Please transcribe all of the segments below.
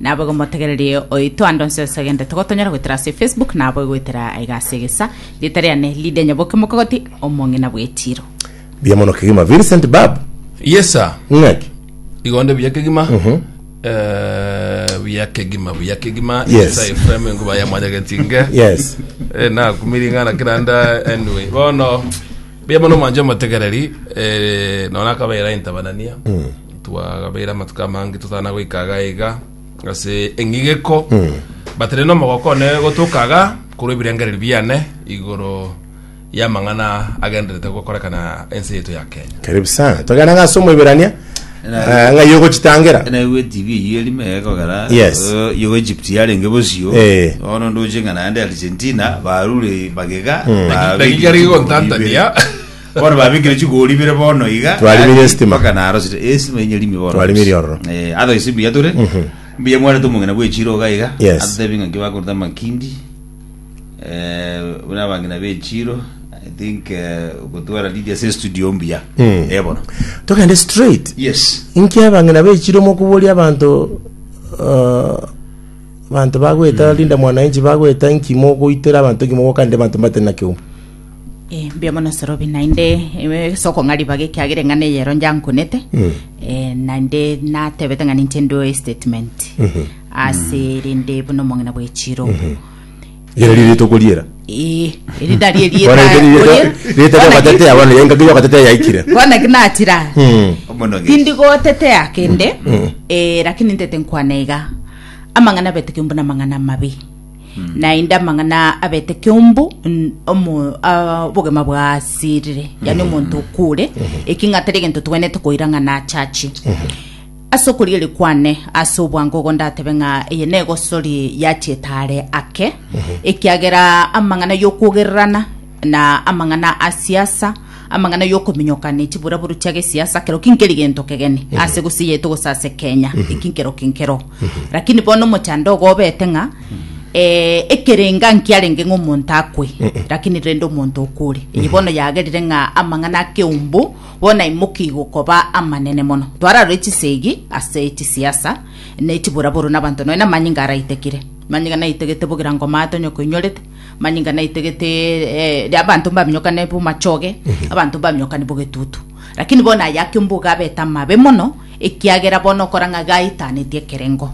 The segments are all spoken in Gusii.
nabo igo motegererie oito ande onse ase egento togotonyora goetera ase facebook nabo igoetera aiga ase egesa rieta riane lidia nyaboke mokogoti omong'ina bw'etiro Mbuya mono kegima Vincent Bab. Yes sir. Ng'aki? Igonde buya kegima. Mhm. Eh, buya kegima, buya kegima. Yes. Isa Ephraim enkuba ya mwanyagetinge. Yes. Eh, nakumiri ng'ana kiranda anyway. Bono Mbuya mono mwanche omotegereri eh, nona akabeera intabanania twagabeera amatuko amange totana goika iga iga ase eng'igeko but rero omogoko one gotoka iga korwa ebirengererio biane igoro y'amang'ana agenderete gokorekana ense yaito ya kenya Karibu sana. Togenda ng'ase omoiberania. Ah, ng'a igo gochitangera naigwe tv eyio eri mega ogera Yes. eh, igo egypt yarenge bosio Eh. bono ndoche ng'a naende argentina barure magega Mm. babekire Dakika eri chigori gontantania. ibere. bono babekire chigori ibere bono iga Twarimirie Yaani, estima. mpaka narosire Eh, estima enye rimi bono Twarimirie ororo. Eh, otherwise mbuya tore mbuya mwarete omong'ina bwechiro iga iga Yes. atebe ng'a kibakorete amakindi Eh, buna abang'ina bechiro i think eh, gotwara lidi ase studio mbuya Mm. Eh, bono togende straight yes inki abang'ina bechire mokoboria abanto eh, abanto bagweta linda mwananchi bagweta inki mogoitera abanto inki mogokande abanto mbatari na kiuma Eh, mbuya mono sorobi naende eh, sokong'a ribaga ekiagera eng'ana eyero njankunete Eh, naende natebete ng'a ninche ndoe statement ase rende buna omong'ina bwechiro Yera riri tokoriera. Eh, eri nari erieta Bwana yete riri orie. rita Bwana ki- yokatetea bwana yenga kiyo yokatetea yaikire. bwana ki natira Mm. Omonogesi. tindi gotetea kende eh, lakini ntete nkwana iga amang'ana beteke mbuna amang'ana amabe naende amang'ana abete kiombo n- omo- ah, obogima bwasirire yani omonto okure eki ng'a tari egento togwenerete koira ng'a nachachi ase okorigeria kwane ase obwango ogo ndatebe ng'a eye negosori yachiete are ake ekiagera amang'ana yokogererana na amang'ana a siasa amang'ana yokominyoka ne chiburaburu chia gesiasa kero kinkeri gento kegeni ase gose yaito gose ase kenya eki nkero kinkero lakini bono omochando ogo obete ng'a eh, ekerenga nkiarenge ng'a omonto akwe lakini rende omonto okure eye bono yagerire ng'a amang'ana akeumbu bono aimoki gokoba amanene mono twararore chisegi ase chisiasa ne chiburaburu na abanto nonya amanyinga araitekire amanyinga naitegete bogira ngoma tonye koinyorete manyinga naite gete eh, ria abanto mbaminyokane bomachoge abanto mbaminyokane bogetutu lakini bono aya ake omboga abete amabe mono ekiagera bono okora ng'a gaitanetie ekerengo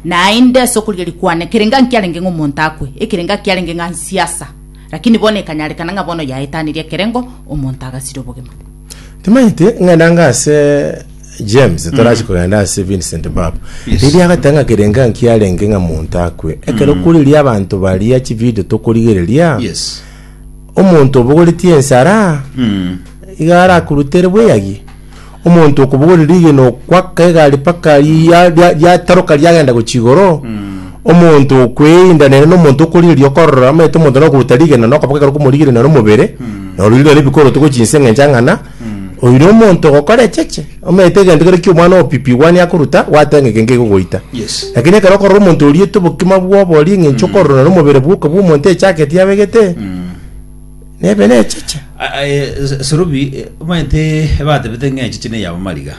naende ase okorigia rikwane ekerengo nkiarenge ng'a omonto akwe ekerengo kiarenge ng'a nsiasa lakini bono ekanyarekana ng'a bono yaetaneria ekerengo omonto agasira obogima Timanyeti ng'enda nga ase James torachi kogenda ase Vincent Bab. Mm. Yes. Riria agatanga ng'a kerenga nkiarenge ng'a monto akwe. Ekero mm. kuriria abanto baria chi video tokorigereria. Yes. Omonto obogoretie ensara. Mm. Iga arakurutere bweyagi. Omonto okobogorera igeno kwaka egari paka yataroka yagenda gochigoro. Mm. Omonto okweindanera nomonto okorigereria okorora, omanyete omonto na okoruta rigena na okobokera okomorigereria naro omobere, na ororire naro ebikoro togochia inse ng'a enchang'ana, oino omonto ogokora echeche, omanyete egento kere ki'omwana opipigwa nigo akoruta, gwateba ng'a eke nkegogoita. Yes. Lakini ekero okorora omonto oriete obokima bw'obori eng'encho okorora naro omobere bwoka bw'omonto echageti abegete, nebe necheche. A- a- e, s- Serubi, e, omanyete batebete ng'a echeche ney'abamaliga.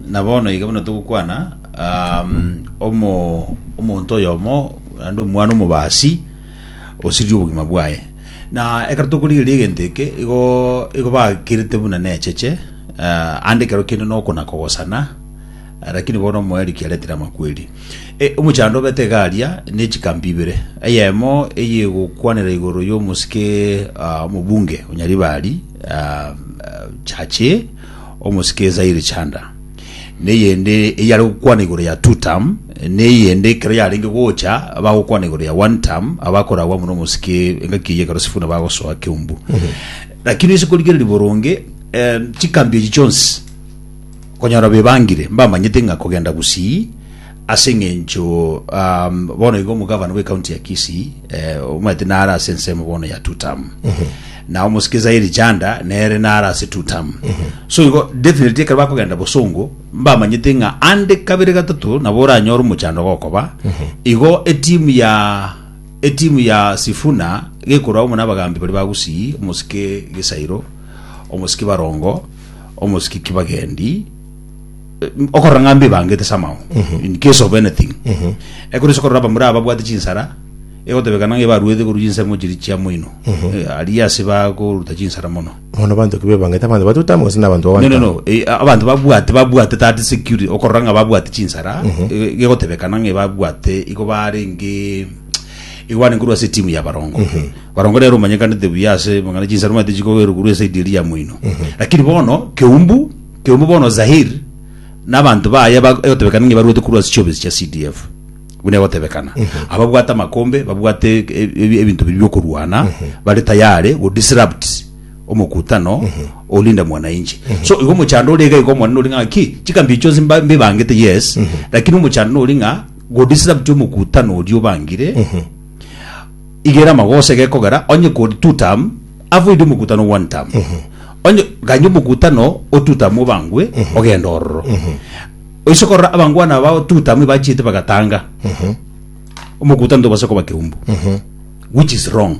Na bono iga buna togokwana, um, omo omonto oyomo naende omwana omobasi osiririe obogima bwaye. Na ekero tokorigereria egento eke, igo igo bakirete buna necheche, uh, ande ekero kende nokona kogosana, Ah, lakini bono omoeriki aretire amakweri e, omochando obete iga aria ne chikambi ibere eyemo eye egokwanera igoro y'omosike ah, omobunge onyaribari ah, ah, chache Omosike ye Zaire Chanda, na eyende eyare gokwana igoro ya Two Term, na eyende ekero yarenge gocha bagokwana igoro ya One Term, abakoragwa amo nomosike engaki eyio ekero Sifuna bagosoa Keumbu. Lakini ase korigereria boronge eh, chikambi echi chionsi konyora bebangire mbamanyete ng'a kogenda gusii Ase engencho bono igo omogavana bwe county ya Kisii omanyete nare ase ensemo bono ya two term na omosikiriza Eli Chanda nere nare ase two term so igo definitely ekero bakogenda bosongo mbamanyete ng'a ande kabere gatato nabo oranyore omochando gokoba igo etimu ya etimu ya Sifuna gekorwa amo nabagambi baria ba Gusii omosike Gesairo omosike Barongo omosike Kibagendi okorora ng'a mbe ebangete ase amao in case of anything ekero ase korora abamura ababwate chinsara egotebeka nang'a ebaruete korwa chinsemo chiri chia moino Eh, aria ase bakoruta chinsara mono Mono banto ki bebangete abanto batotama gose nabanto no no babana. no eh, abanto babwate babwate that security okorora ng'a babwate chinsara eh, gegotebeka nang'a ebabwate igo barenge igo barenge korwa ase etimu ya barongo barongo rero omanyekanete buya ase mang'ana chinsara omanyete chikogerwa korwa esaidi eria ya moino lakini bono keumbu Kegumbe bono Zahir na abanto baye aba egotebekana ng'a baruete korwa ase chiobisi chia CDF, buna egotebekana, ababwate amakombe, babwate e- e- ebinto biria biokorwana, bare tayari go disrupt omokutano olinda mwananchi. So igo omochando ore iga iga omonene ore ng'a ki, chikambi echi chionsi mba- mbibangete yes, lakini omochando nore ng'a go disrupt omokutano oria obangire, igere amagoso egekogera onye kori two term, Avoide omokutano one time. Onye ganye omokutano o two time obangwe ogenda ororo. Oise korora abangwana abao two time ebachiete bagatanga. Omokutano tobasa koba keumbu. Which is wrong.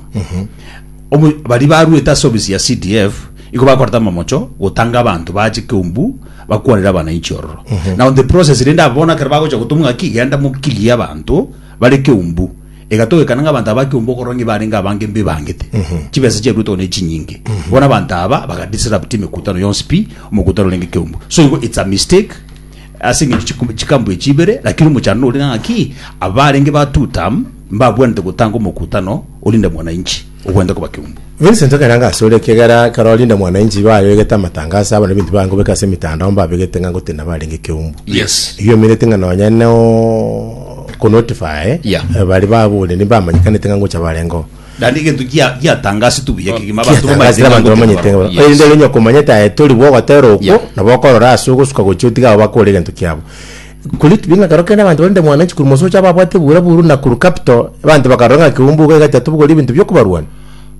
Omo bari baruete ase ofisi ya CDF iko bakoreta amamocho gotanga abanto bache keumbu bakwanere abananchi ororo. Now the process rende abo bono ekero bagocha gotoma ng'aki genda mo clear abanto bare keumbu. Egatogekana ng'a abanto aba akeumba okorora ng'a ebarenge abange mbebangete, chibesa chiaruetwe gose ne chinyinge. Bono abanto aba baga disrupt emekutano yonsi pi, omokutano orenge ekeumbu. So igo it's a mistake ase eng'encho chiku- chikambu echi ibere, lakini omochando nore ng'a ng'aki, abarenge ba two term mbabwanete gotanga omokutano orinde mwananchi. ogwenta koba keumbu. Vincent ekero ango asore ekiagera ekero rinde mwananchi igo ayogete amatangaso abana ebinto bia ngobeka ase emitandao mbabegete ng'a ngotenena barenge keumbu. Yes. Igo omenyete ng'a nonye no konotify Yeah. eh, bari babureni bamanyekanete ng'a ngocha barengeo. Naende egento gia- giatangasetwe buya kegima abanto bamaete Kiatangasire ng'a abanto ngotenena bamanyete barenge. ng'a- Yes. erinde onye okomanyete aye tori bwa ogotera okwo Yeah. nabo okorora ase ogosuka gochia otiga abo bakore egento kiabo Korwa ekibiina ekerogo kende abanto barenge mwananchi korwa omosocha ababwate ebuura buru na korwa kapito, abanto bakarora ng'a keumbu igo egachia tobogori ebinto bi'okobarwania.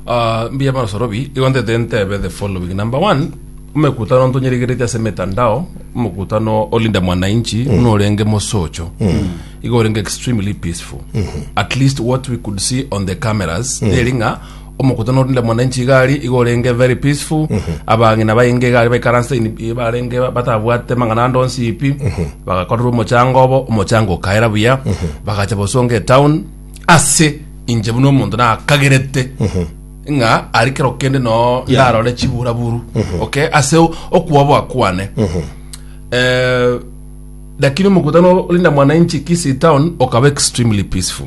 Ah, mbuya mono Sorobi, igo ntete ntebe the following. Number one, omekutano ntonyeregereti ase emetandao, omokutano o Linda Mwananchi buna orenge mosocho, igo orenge extremely peaceful. At least what we could see on the cameras, neri ng'a Omokutano orinde mwananchi iga aria iga orenge very peaceful abang'ina bainge iga aria baikaranse in- i- barenge ba- batabwate mang'ana ande onsi pi bagakorera omochango obo omochango okaera buya bagacha bosonga etown ase inche buna omonto nakagerete ng'a ari kero kende noo Yeah. ndarore chiburaburu okay ase o- okwoboa kwane Eh, lakini omokutano orinda mwananchi kisii town okaba extremely peaceful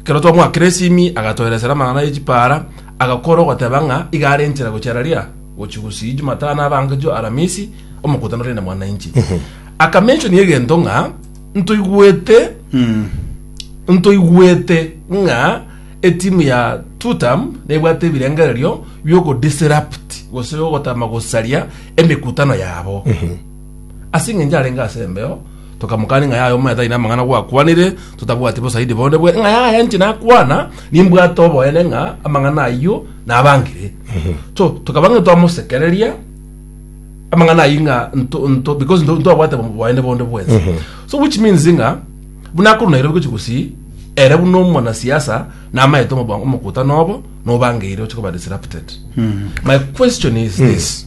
Ekero twamoa Kresimi agatoeresera amang'ana ye chipaara, agakora ogoteba ng'a iga are enchera gochia Iraria gochia gusii Jumatano abange jio Aramisi omokutano rinde mwananchi. Akamentionia egento ng'a ntoigwete ntoigwete ng'a etimu ya Tutam nebwate ebirengererio bi'ogodisrupt gose ogotama gosaria emekutano yabo. Ase engencho arenge ase embeo, tokamokania ng'a yaya omanyete aye namang'ana gwakwanire, totabwati bosaidi bonde bwe ng'a yaya inche nakwana, nimbwate oboene ng'a amang'ana ayio nabangire. So, tokaba ng'a twamosekereria amang'ana ayio ng'a nto nto because nto ntwabwate bo- boene bonde bwensi. So which means ng'a buna akorwa Nairobi gochia gosii, ere buna omwanasiasa namanyete omoba- omokutano obo nobangeire oche koba disrupted. My question is this.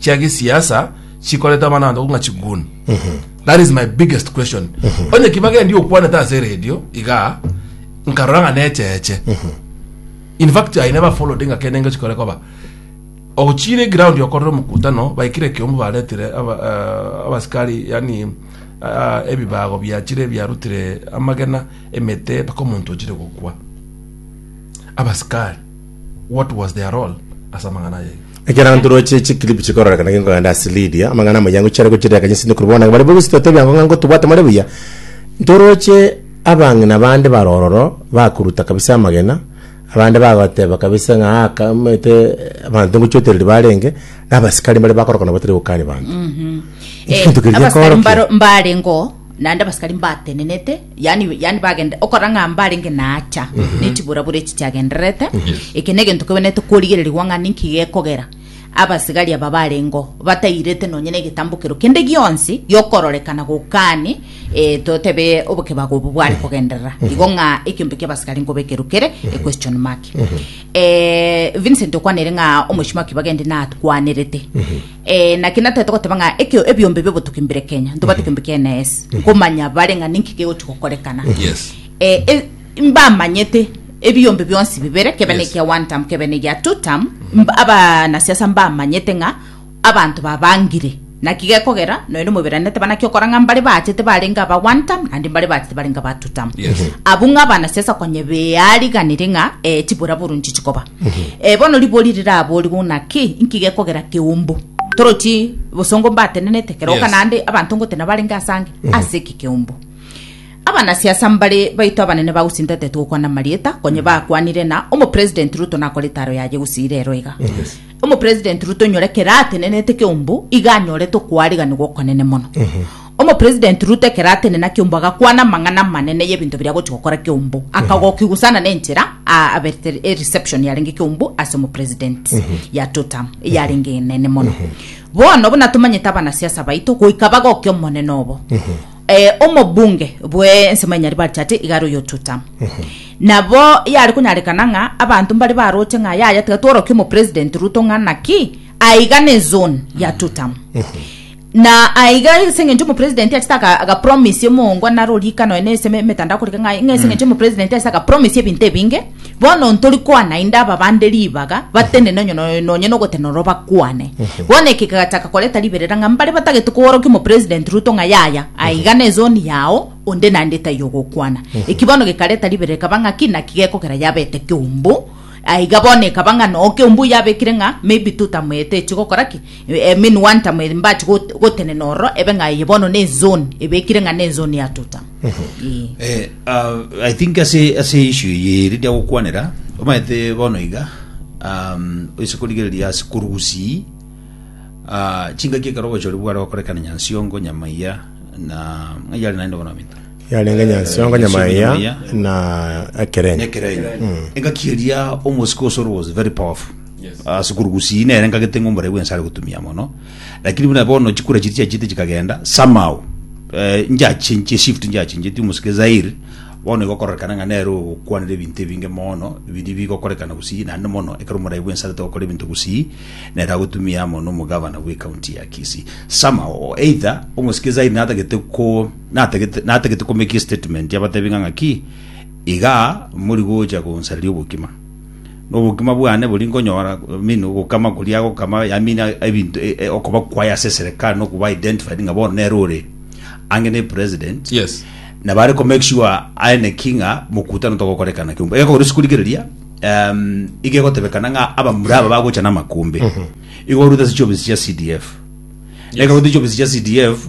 chia gesiasa chikoreta abanto ng'a chiguni that is my biggest question onye kibage ndi okwanete ase radio iga nkarora ng'a necheche in fact i never followed ng'a kende ingo chikore koba ogochire ground okorere omokutano baikire ekiombe baretire aba- eh, abasikari yani ah, ebibago biachire biarutire amagena emete mpaka omonto ochire gokwa abasikari What was their role ase amang'ana ayio? Ekero abanto roche chikilipu chikororekana genkogenda ase Lydia, amang'ana amanyangu chiare gochirera kanyese ne korwa bono nabo bare bogosi totebia ng'o ng'a ngotobwate more buya. Ntoroche abang'ina bande bare ororo bakoruta kabisa amagena, abande bagoteba kabisa ng'a aa aka omanyete abanto ngochiotereri barenge, na abasikari mbare bakorokana batari gokani banto. Eki Eh, gento keria abasikari gekoorokia. mbaro- mbarengeo naende abasikari mbatenenete yani yani bagende okora ng'a mbarenge naacha ne chiburabura echi chiagendererete eke ne egento kebenete korigererigwa ng'a ninki gekogera abasigari aba barengo batairete nonye na egetambokero kende gionsi giokororekana gokani eh, totebe obokebago obo bware kogenderera igo ng'a ekiombe ki'abasigari nkoba ekerukere a question mark eh, vincent okwanire ng'a omochie mwaki bagende nakwanerete Eh, naki natari togoteba ng'a ekio ebiombe biobotuki mbire Kenya ntobate kiombe kia NS komanya bare ng'a ninki kegochi gokorekana Yes. Eh, e- mbamanyete ebiombe bionsi bibere kebe Yes. nekia one term kebe negia two term mb- abanasiasa mbamanyete ng'a abanto babangire naki gekogera noende moberanete banaki okora ng'a mbare baachete barenge aba one term naende mbare baachete barenge aba two term Yes. abwo ng'a abanasiasa konye beariganire ng'a eh, chiburaburu nchichikoba Eh, bono ribori riraboorigwe ng'a ki? Inki gekogera keumbu? Torochi bosongo mbatenenete, kera oka Yes. naende abanto ngote nabarenge ase ange, ase eki keumbu. Abanasiasa mbare baito abanene bagosintete togokwana marieta, konye bakwanire na omopresident Ruto nakore etaro yaye gosiira ero iga. Omopresident Ruto nyore kera atenenete keumbu, iga anyore tokwariganigwa okonene mono. Omopresident Ruto ekero atenena Kiombo agakwana amang'ana amanene y'ebinto biria agochia gokora Kiombo. Akagokia gusana n'enchera aa aberete ereception yarenge Kiombo ase omopresident ya two term eyarenge enene mono. Bono buna tomanyete abanasiasa baito goika bagokia omonene obo. Eh, omobunge bwe ensemo ya Nyaribari Chati iga are oyo two term. Nabo yare konyarekana ng'a abanto mbare baroche ng'a yaya tiga tworokie omopresident Ruto ng'a naki aiga ne zone ya two term. Na aiga ase engencho omopresident achete aga- agapromise omongo naro orika nonya nase eme- emetandao korika ng'a ng'a ase engencho omopresident achete agapromise ebinto ebinge bono ntori kwana inde aba bande ribaga batenene onye no- nonya na ogotenena oro bakwane bono eke kegachaka koreta riberera ng'a mbare batagete koorokia omopresident ruto ng'a yaya aiga ne zone yao onde naende tai ogokwana eki bono gekareta riberera ekaba ng'a ki naki gekogera yabete keumbu aiga bono ekaba ng'a no keumbu yabekire ng'a maybe totamoete echi gokora ki Emenwa ntamo eye mbache got- gotenena ororo ebe ng'a eye bono n'enzoni, ebekire ng'a n'enzoni ya Tutam. Ee. Eh, ah, i think ase ase issue eye eri ndiagokwanera omanyete bono iga um, oise korigereria ase korwa gusii ah, chingaki ekero obochori bware gokorekana nyansiongo nyamaiya na ng'ai yare naende bono minto Yarenge nyansongo nyamaiga na ekerenyo. ekerenyo engaki eria omosike o soro was very powerful ase korwa gusii nere ngagete ng'a omorai bwense are gotumia mono lakini buna bono chikura chiria chiachete chikagenda somehow eh, nchiachinchie shift nchiachincheti omosike zairi bono igokororekana ng'a nere ogokwanera ebinto ebinge mono biri bigokorekana gusii naende mono ekero omorai bwense arete gokora ebinto gusii nere agotumia amo na omogavana bw'ecounty ya kisii somehow either omosike zairi natagete ko Natagete, natagete komaking statement abatebi ng'a ng'aki, iga mori gocha gonsareria obokima. Na obokima bwane bori nkonyora, I mean, ogokama koria agokama, I mean, ebinto, e- e- okoba kwaye ase eserekari, na okuba identified ng'a bono nere ore ange ne president. Yes. Na bare ko make sure aene ki ng'a mokutano togokorekana kiumbe. Egekogera ase korigereria, em, iga egotebekana ng'a abamura aba bagocha namakumbi. Iga orute ase chiofisi chia CDF. Ega orute chiofisi chia CDF,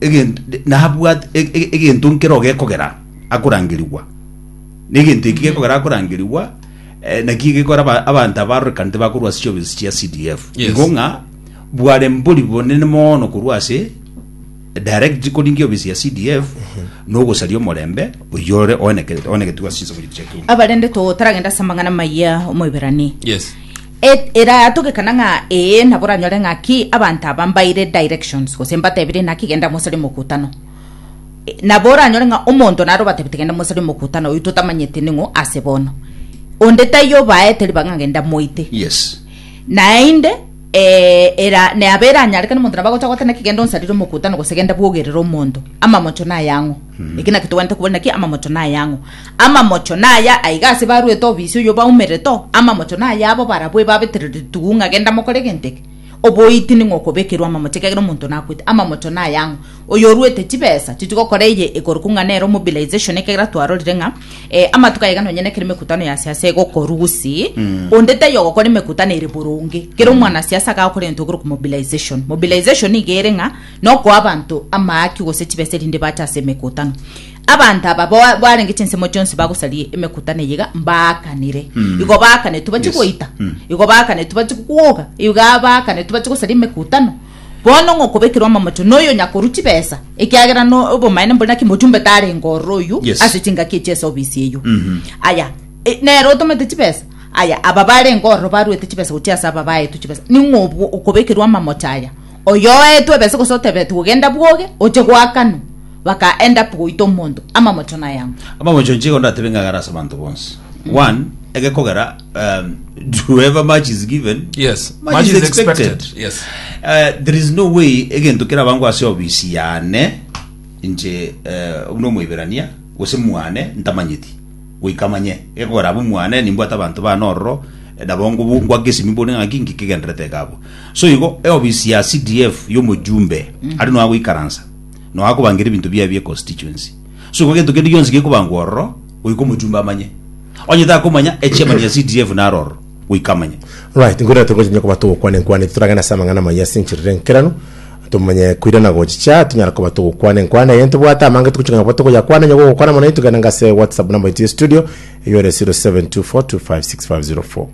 egento nabwate e- e- egento nkero gekogera akorangerigwa na egento eki gekogera akorangerigwa eh, naki gekora aba- abanto abaroreka ntibakorwa ase chiobisi chia cdf Yes. igo ng'a bware mbori bonene mono korwa ase direct koringia obisi ya cdf nogosaria omorembe oyore oenekerete oenegetigwa ase chinsa buri chiakiu abarende totaragenda ase amang'ana maya omoiberani yes Et eratogekana ng'a ee nabo oranyore ng'aki abanto aba mbaire directions gose mbatebire naki genda mosari mokutano. E, nabo oranyore ng'a omonto naro obatebete genda mosari mokutano oyio totamanyete ning'o ase bono. Onde taiyo obaete ribaga ng'a genda moite. Yes. Naende eh, era nabo eranyarekane omonto nabo agocha gote naki genda onsarire omokutano gose genda bwogerere omonto. Amamocho nayang'o? Eki nakio togwenerete kobua naki amamocho nay'ang'o? Amamocho naya aiga ase baruete obisi oyio baumerete oo, amamocho nay'abo barabwo ebabetereretigwe ng'a genda mokore egento eke. Oboiti ning'o okobekerwa amamocho ekiagera omonto nakwete? Amamocho nay'ang'o? Oyoruete chibesa chichia gokora eye ekorokwa ng'a nero mobilization ekiagera twarorire ng'a eh, amatuko aiga nonye nekero emekutano ya siasa egokorwa gusii, onde taiyo ogokora emekutano ere boronge. Kero omwanasiasa agakora egento ekorokwa mobilization. Mobilization niga ere ng'a nokoa abanto amaaki gose chibesa erinde baache ase emekutano. Abanto aba ba- barenge chinsemo chionsi bagosaria emekutano eye iga mbaakanire. Igo baakanetwe bache Yes. goita, Mm. igo baakanetwe bache kwoga, iga baakanetwe bache gosaria emekutano. Bono ng'a okobekerwa amamocho noyo nyakorwa chibesa, ekiagera no- obomaene mbore naki mochumbe tarenge ororo oyio Yes. ase chingaki echi ase obisi eyio. Mhm. Aya, e- nere otomete chibesa, aya aba barenge ororo baruete chibesa gochia ase aba baetwe chibesa. Ning'o obwo okobekerwa amamocho aya? oyoetwe ebese gose otebetwe genda bwoge oche goakanwa baka end up goita omonto amamocho nayamo amamocho inche igo ndatebe ng'agare ase abanto bonsi one egekogera um, to ever much is given Yes, much is expected. Yes. Uh, there is no way egento kera bango ase obisi yane inche uh, buna omoiberania gose mwane ntamanyeti goika manye egekogera abo mwane nimbwate abanto bane ororo eh, nabo ngobu- ngwake esimi bone ng'aki ngekegenderete ekabo Soigo eofisi ya CDF y'omojumbe are nonya goikaransa, nonya akobangeria ebinto biaye bie constituency. Soigo gento kende gionsi gekobangwa ororo, goika omojumbe amanye. Onye takomanya, echairman ya CDF naro ororo, goika amanye. Alright, nkoirana togocha onye koba togokwana enkwana eye, toragende ase amang'ana amayia ase encherero enkeranu, tomanye koirana gochicha tonyare koba togokwana enkwana eye. Ntobwate amange togochika ng'a nabwo togoyakwana, onye gogokwana mono intwe genda ng'a ase WhatsApp number yaito ya estudio, eyo ere 0724256504.